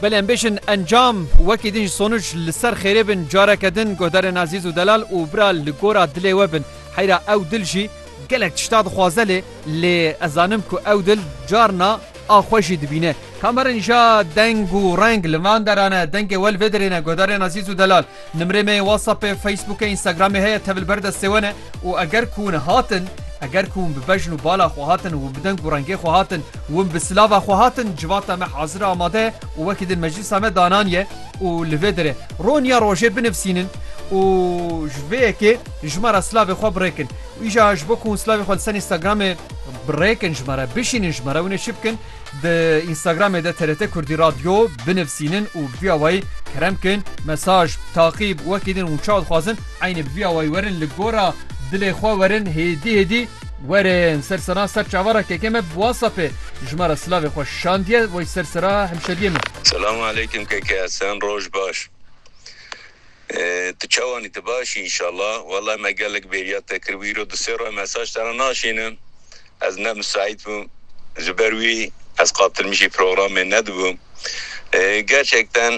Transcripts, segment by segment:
Belê em bêjin encam wekî din ji sonuc li ser xêrê bin careke din guhdarên Azîz û Delal û bira li gora dilê we bin. Heyra ew dil jî gelek tişta dixwaze lê lê ez zanim ku ew dil carna a xwe jî dibîne. Kamerin ja deng û reng li van deran e. Dengê we li vê derê ne. Guhdarên Azîz û Delal. Nimrê me yê WhatsAppê, Facebookê, Instagramê heye tevil ber destê we ne û eger ku hûn hatin, eger ku hûn bi bejn û bala xwe hatin, hûn bi deng û rengê xwe hatin, hûn bi silava xwe hatin, civata me hazir e amade ye û wekî din meclîsa me dananiye û li vê derê roniya rojê binivsînin û ji vê yekê ji me re silavê xwe birêkin. Îja ji bo ku hûn silavê xwe li ser Instagramê birêkin ji me re, bişînin ji me re hûn ê çi bikin? Di Instagramê de TRT Kurdî Radyo binivîsînin û bi vî awayî kerem bikin, mesaj, taqîb wekî din û çawa dixwazin eynî bi vî awayî werin li gora dilê xwe werin hêdî hêdî. Werin ser sena ser çavara kekê me bi WhatsAppê ji me re silavê xwe şandiye, wey ser sera hemşeriyê min. Selam aleykim keke, sen roj baş. Tu çawan î? Tu baş î înşallah. Wellay me gelek bêriya te kir wî îro du sê roje mesaj te re naşînim ez ne misaît bûm ji ber wî ez qatilmişî programê nedibûm gerçekten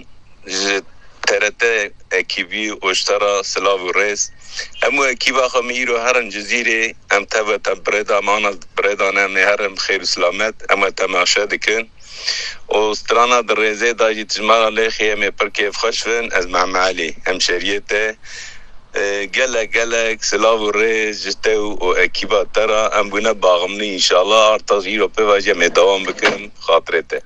ji TRT ekîbî oştera silav û rêz hemû ekîba xwe min îro herin cizîrê em teve te birêda me birêda ne em ê herin bi xêr û silamet em te meşe dikin. û strana di rêzê de jî tijmara Lêxê em ê pir kêfxweş bin. Ez Mehme Elî, hemşeriyê te gelek gelek silav û rêz ji te û û ekîba te re. Em bûne baxmnî înşala artax jî îro pêva jî em ê dewam bikin bi xatirê te.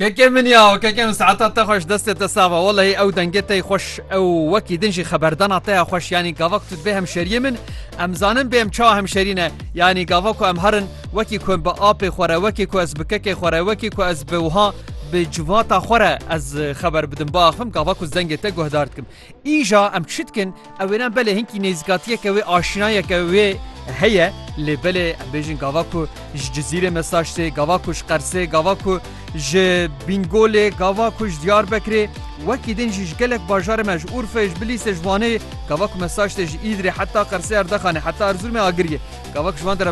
Keke min ya keke min saeta te xweş destê te sax be walahi ew dengê te yî xweş ew wekî din jî xeberdana te ya xweş yanî gava ku tu dibê hemşeriyê min em zanin bê em çawa hemşerî ne yanî gava ku em herin Wekî ku bi apê xwe re, wekî ku ez bi kekê xwe re, wekî ku ez bi wiha bi civata xwe re ez xeber bidim, biaxivim gava ku zengê te guhdar dikim. Îja em çi dikin? Ew ê ne belê hinkî nêzîkatiyeke wê, aşînayeke wê heye lê belê em bêjin gava ku ji Cizîrê mesaj tê, gava ku ji Qersê, gava ku ji Bîngolê, gava ku ji Diyarbekirê, wekî din jî ji gelek bajarê me, ji Urfê, ji Bilîsê, ji Wanê, gava ku mesaj tê ji Îdirê heta Qersê Erdexanê, heta Erzurumê Agiriyê, gava ku ji wan de re